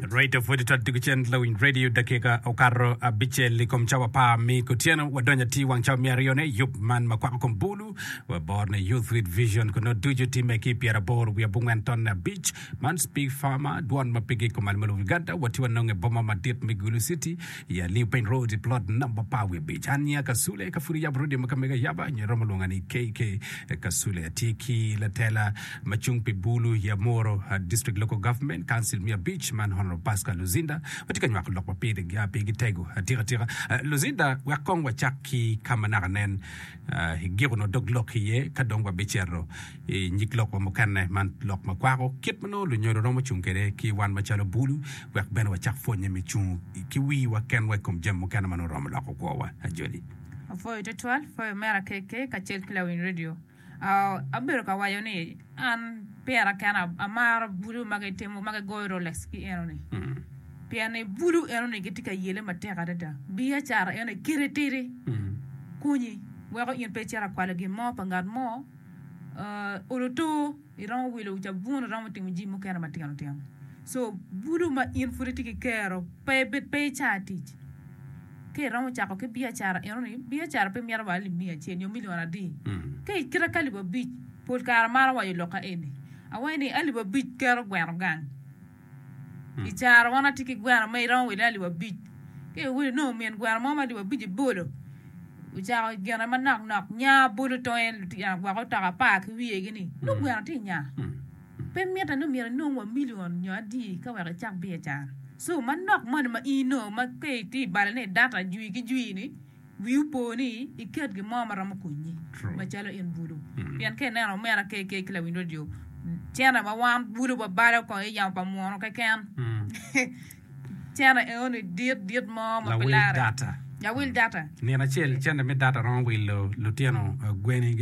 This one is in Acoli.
Rate of Editor Tigo Cen Lawiny Radio dakika okato abicel i kom cawa par mi kutyeno wadonyo atir wang cawa me aryone i yub man ma kwako kom bulu wa bor ne Youth with Vision kun nongo ducu timme ki pyera bor wiye bungwen tonne abic man Speak Farmer dwon ma pigi kumal ma lubo Uganda wati wanonge boma madit me Gulu City I Aliu Paint Road i plot namba par wiye abic. An nyinga Kasule. Ka pud iyabo rodi ma ka mego ayaba, nyo iromo lwonga ni KK Kasule. Atye ki latela ma cung pi Bulu, Yamoro District Local Government, Council me abic, man Honourable Pascal Luzinda. Watye ka nywako lok ma pigi tego. Atika tika, Luzinda, wek kong wacak ki ka ma naka nen. I giko nyo dog lok iye ka dong wabicito i nyig lok wa mukene man lok ma kwako kit ma nongo lunyodo romo cung kwede ki wan macalo bulu wek bene wacak pwonye me cung ki wiwa kenwa i kom jami mukene ma nongo romo loko kwowa. Ajoli. Apwoyo twatwal pwoyo mera KK kacel ki lawiny redio. Abedo ka waco ni. An pira kena amaro bulu ma gitimo ma gigoyo Rolex ki enoni pien ni bulu enoni gitye ka yele matek adada. Biacara eno kite tidi konyi weko in pe icito akwalo gin mo pa ngat mo, ah, olo too, iromo wilo cabun, iromo timo jami mukene matino tino. So bulu ma in pud itye ki kero pe pe ica tic. Ka iromo cako ki biacara enoni, biacara pe mito wa libing acel nyo milion adi. Ka i kite ki alip abic, pol kare amaro waco lok aeni, awaco ni alip abic keto gweno gang. I cara wan atye ki gweno ma iromo wile alip abic. Ka iwili inongo min gweno mo ma alip abic ibolo, ocako gine manok nok, nya bolo tonge, lutino gwoko otoka apar ki wiye gi ni, nongo gweno tye i nya. Pe mitte ni myero inong wa milion nyo adi ka wek icak biacara. So, manok moni ma in onongo ma ka itye i balane i data jwi ki jwi-ni, wii opo ni iket gin mo ma romo konyi macalo in bulu. Pien ka ineno omena KK ki lawiny redio cene ma wan bulu wabalo kong i yamo pa munu keken, cene eno-ni dit dit mo ma pe larre. Lawil data. Nino acel cente me data romo wilo lutino gweni.